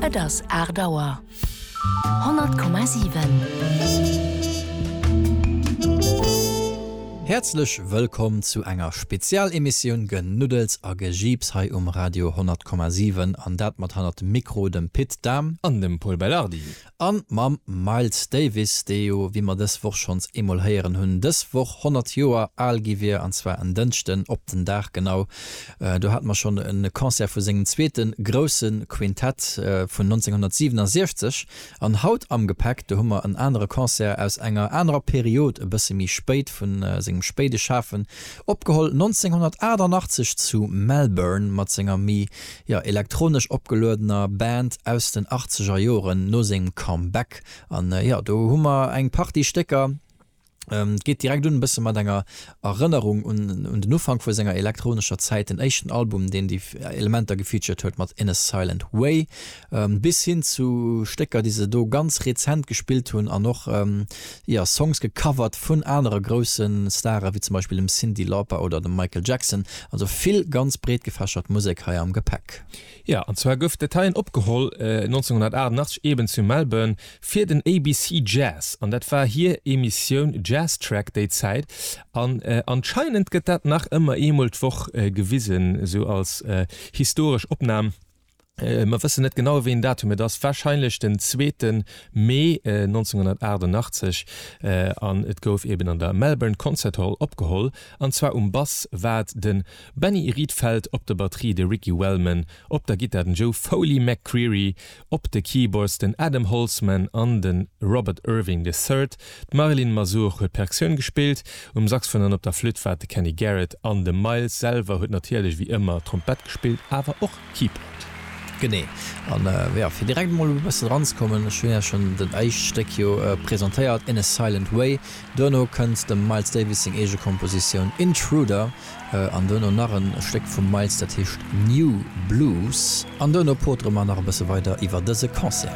Et ass aacht Auer. 100,7. Häerzlech wëllkomm zu enger Spezialemissioun Genuddels a Gejiips hei um Radio 100,7. An dat mat hannert dem Mikro dem Pit Dahm. An dem Pol Belardi. An mam Miles Davis, dee jo, wéi mer dës Woch schonns eemol héieren hunn, dës Woch 100 Joer al gi wier, an zwar en Dënschden op den Dag genau, do hate mer schonn e Concert vu sengem zweete grousse Quintett vun 1967. An haut am Gepäck, do hu mer en anere Concert aus enger anerer Period, e bësse méi spéit, vu sengem spéide Schafen, opgeholl 1988 zu Melbourne mat senger méi Jo, elektronesch opgeluedener Band aus den achtzeger Joren no sengem Comeback. An jo, do hu mer eng Partie Stécker. Et geet direkt un e bësse mat enger Erënnerung un den Ufank vu senger elektronescher Zäit, den éischten Album, deen déi Elementer gefeatured huet mat In a Silent Way, bis hin zu Stécker, déi se do ganz rezent gespillt hunn an och Jo, Songs gecovert vun anere grousse Stare wéi zum Beispill dem Cyndi Lauper oder dem Michael Jackson. Also vill ganz breetgefächert Musek hei am Gepäck. Jo, an zwar gouf dat heien opgeholl 1988 eben zu Melbourne fir den ABC Jazz an dat war hier Emissioun Jazz Track déi Zäit an anscheinend gëtt dat nach ëmmer eemol d'Woch gewisen, esou als historesch Opnam. Mer wëssen net genau wéi en Datum et ass, wahrscheinlech den zweeten Mee 1988 an et gouf eben an der Melbourne Concert Hall opgeholl an zwar um Bass war et de Benny Rietveld, op der Batterie de Ricky Wellman, op der Gittar den Joe Foley McCreery, op de Keyboards den Adam Holzman an de Robert Irving the Third. D'Marilyn Mazur huet Percussioun gespillt, um Saxfon an op der Flütt war et de Kenny Garrett an de Miles selwer huet natierlech wéi ëmmer Trompett gespillt, awer och Keyboard. Genee, an jo, fir direkt emol e bëssen eranzekommen, ech hunn Iech schonn dat éischt Stéck jo presentéiert, In a Silent Way, duerno kënnt dem Miles Davis seng eege Kompositioun Intruder an duerno nach e Stéck vum Miles, dat heescht New Blues an duerno potere mer nach e bësse weider iwwer dëse Concert.